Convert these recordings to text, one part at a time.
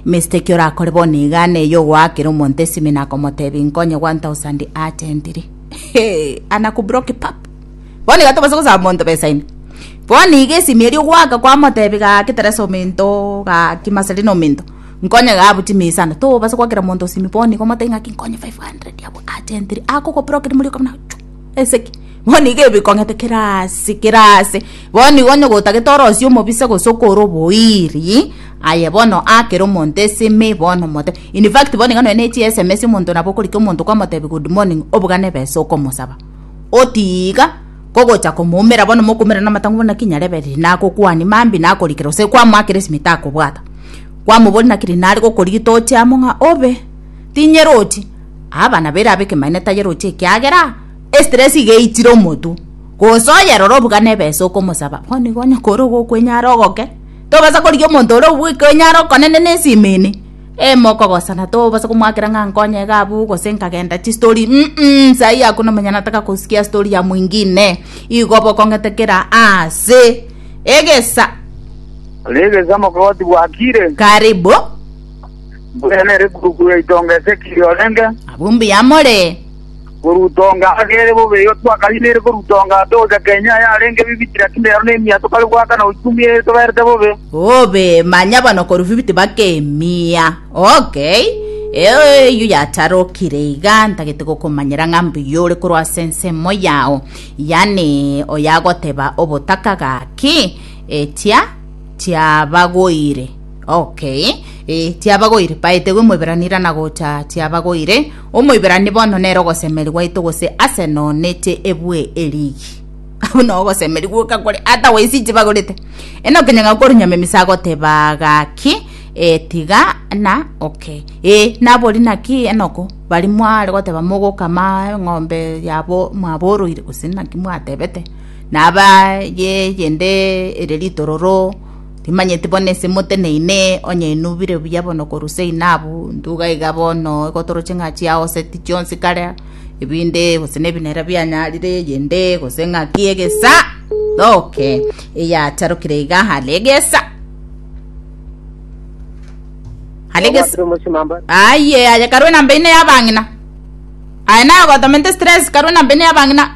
Mr. Ki orakore bono iga neye ogoakera omonto esimi nakomotebi nkonye 1000 atentiri. Hey, anakubroki pap. Bono iga tobasa gosaba monto besa ime. Bono iga esimi eri ogoaka kwamotebi gaki teresa ominto gaki maseri na ominto. Nkonye gabu chimisa na tobasa goakera monto esimi bono iga omotebi ngaki nkonye 500 abo atentiri. Akogobroki muri okabuna chu. Esegi, bono iga ebikong'ete kera aase, kera aase. Bono iga onye gotagete orosie omobisa gose okore oboiri, aye bono akera omonto esimi bono omotebe. In fact bono iga nonya ne chiSMS omonto nabo okorika omonto okamotebia good morning obuga na ebesa okomosaba. Otiga kogocha komoumera bono mokoumera na amatango bono naki nyarebe riria nagokwania mambia nakorikera gose kwamoakera esimi takobwata. Kwamoboria naki riria nare gokorigia toche amo ng'a obe, tinyeroche. Abana baire abe kemanne tayeroche ekiagera estress iga eitire omotu. Gose oyerore obugana ebesa okomosaba bono igo onye kore ogokwenyara ogoke. Tobasa korigia omonto ore obwekwenyara okonene na esime ene. Emokogosana tobasa komoakera ng'a nkonye iga abwo gose nkagenda chi story mm saii hakuna mwenye anataka kusikia story ya mwingine. Igo obe okong'ete kera aase. Egesa. Egesa mokogoti gwakire. Karibu. mbuya nere gurugu yaito onga Ezekieli orenge, Abumbe y'amore. koruta onga agere bobe igo twakariinere koruta onga togocha kenywa ayarenge ebibiti lakini rero nemia tokare goakana gochia omia eye toberete bobe. Obe manya bono korwa fifiti baka emia. Okay. Eyio yatarokire iga ntagete gokomanyera ng'a mbuya ore korwa ase ensemo yao, yaani oyagoteba obotaka gaki, etia tiabagoire. Okay, eh, tiabagoire, paetegwe Moiberani rana gocha tiabagoire. Omoiberani bono nere ogosemerigwa aito gose ase nonete ebwe erigi. Buna ogosemerigwa okakore ata waisi inche bagorete. Eno kenyanga korunyama emisa agoteba gaki eh, tiga na okay. Eh, nabori naki enoko bari mware goteba mogokama eng'ombe yabo mwaboroire gose naki mwatebete. Naba ye yende ere ritororo Timanyeti bono ase moteneine, onye inubire buya bono korwa ase inabu, ntuga iga bono egotoroche ng'a chiaoseti chionsi kare, ebinde, gose nebinera bianyarire, eyende, gose ng'aki egesa, thoke, eyacharokire iga are egesa. Are egesa. Obwatire omosima mba. Aye, aye karue namba ine y'abang'ina. Aye naye ogotomenta stress karue namba ine y'abang'ina.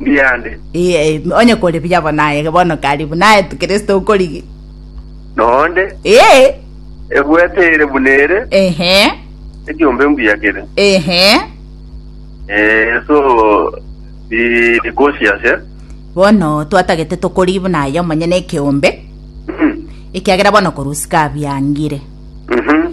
Ndiande. Ee, onye kore buya bono aye bono karibu naye tu Kristo okorigi. Noonde, Ee, ebwete ere buna ere, ehe, ekiombe mbuya kere. ehe. Eh, so, bi- bikosi ase. Bono twatagete tokorigi buna aye omonyene ekeombe, Mhm. ekiagera bono korusika abiangire. Mhm.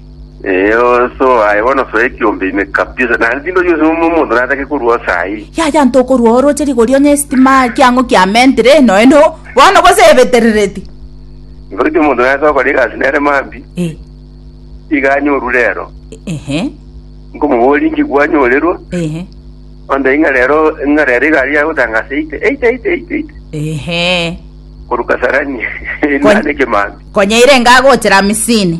Eyo so aye bono so ekiombe ime kabisa. Na ntindo yose mo mondo na atake kurua sai. Yaya ntokorua oroche rigori onye estima kiang'o kiamentire eno eno bono gose ebeterereti. Nkoriki omonto nase okora egasi nere mambi, Eh, iga anyoru rero. ehe, Nkomoboria inki gwanyorerwa, ehe, onde ing'a rero ing'a rero igari yagotanga ase eite eite eite eite eite. ehe. Koruka sarani Kon- nane kemambi. Konyaire ngagochera misini.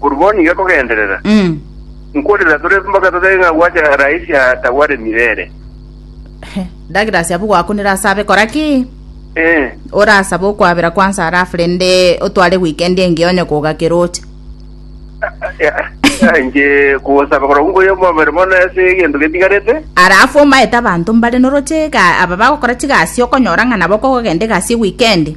Korwa bono iga kogenderera, nkorera tore mpaka totige ng'a gwacha raisi atagwaremire ere. Douglas abwo gwakunire asabe kora ki? Eh, Orasabe okwabera kwansa alafu rende otware weekend engiya onye kogakera oche. eh, inche kosaba korwa nkoyo omobere mono ase egento getigarete. Alafu omaete abanto mbare noroche ega aba bagokora chigasi okonyora ng'a nabo kogogenda egasi weekend.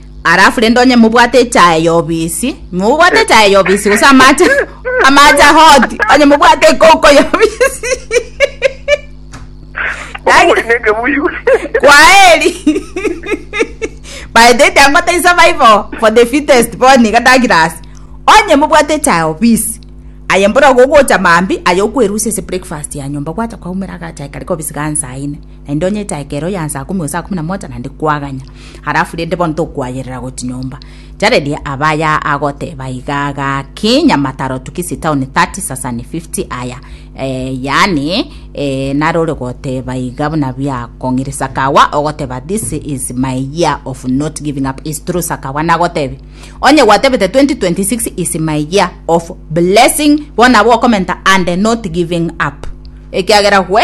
Alafu rende onye mobwate echae yobisi, mobwate eh. echae yobisi gose amache amache hoti, onye mobwate ekoko yobisi. Kwaheri. By the time what is survival for the fittest born kata glass. Onye mobwate echae yobisi. Aye mbora gogocha mambi aye okwerusia se breakfast ya nyomba gwacha kwa umera gacha kare kobisi gansaine. naende onyete ekero ya saa kumi gose saa kumi na moja naende kwaganya halafu rende bono tokwayerera goti nyomba Jaredi abaya agoteba iga gaki nyamataro tukisi town 30 sasani 50 aya eh, yani eh, narore goteba iga buna bia kong'iri sakawa ogoteba this is my year of not giving up is true sakawa nagotebi onye gwatebete 2026 is my year of blessing bona bokomenta and not giving up ekiagera gwe